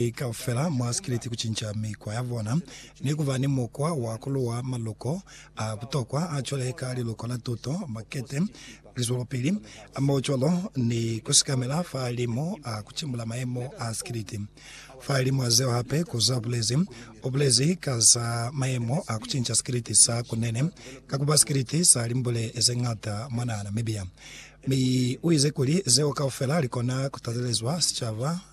Ki kaufela mwa sikiliti kucinca mikwa ya bona ni kuba ni mukwa wa kuluwa maluko a butokwa a cwale ka liluko la tuto, makete, lizwelopili, hamohocwalo ni kusikamela fahalimu a kucimbula mayemo a sikiliti. Fahalimu a zeo hape, Kuza ubulezi ubulezi ka za mayemo a kucinca sikiliti sa kunene ka kuba sikiliti sa limbule zeñata mwa naha Namibia, mi uize kuli zeo kaufela likona kutatelezwa sicaba.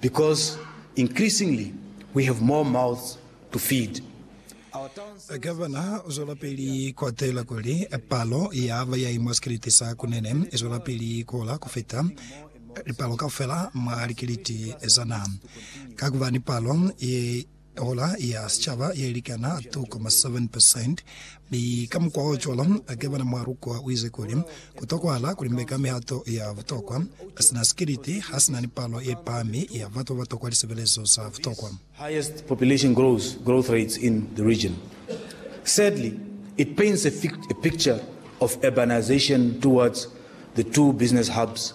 because increasingly we have more mouths to feed. Gavana u zwelapili ku atela kuli, Palo ya ba ya imwa sikiliti sa kunene i zwelapili ku hola ku fita lipalo kaufela mwa likiliti za naha. Ka ku ba ni palo ye Tola ya sicaba ye likana 2.7%, mi kamukwaocwalo akebana mwa lukwa uize kuli, Ku tokwahala kuli mbe ka mihato ya butokwa, sina sikiliti hasina ni palo ye pahami ya batu babatokwa lisebelezo za butokwa. highest population growth growth rates in the region. Sadly, it paints a thick a picture of urbanization towards the two business hubs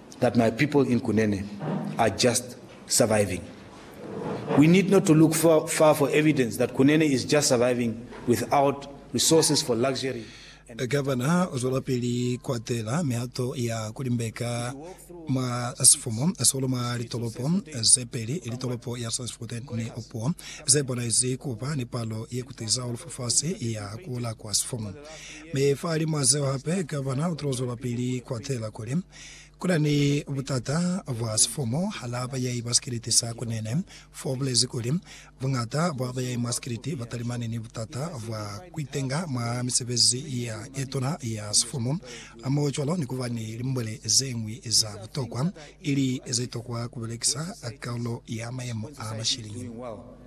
that my people in Kunene are just surviving. We need not to look far, far for evidence that Kunene is just surviving without resources for luxury and Gavana uzwelapili kuatela mihato ya kulimbeka mwa sifumu sihulu mwa litolopo zepeli, litolopo ya Sandspruit ni Opuwo, zebonezi kuba ni palo yekutiza hahulu fafasi ya kula kwa sifumu. Mi fa halimwa zeo hape, Gavana u tilo zwelapili ku atela kuli ku na ni butata bwa sifumu halaa bayahi ba sikiliti sa Kunene, fo u bulezi kuli, Buñata bwa bayahi mwa sikiliti ba talimani ni butata bwa ku itenga mwa misebezi ya ye tuna ya sifumu, hamohocwalo ni ku ba ni limbwele ze ñwi za butokwa, ili ze tokwa ku belekisa karolo ya mayemo a mashiliñi.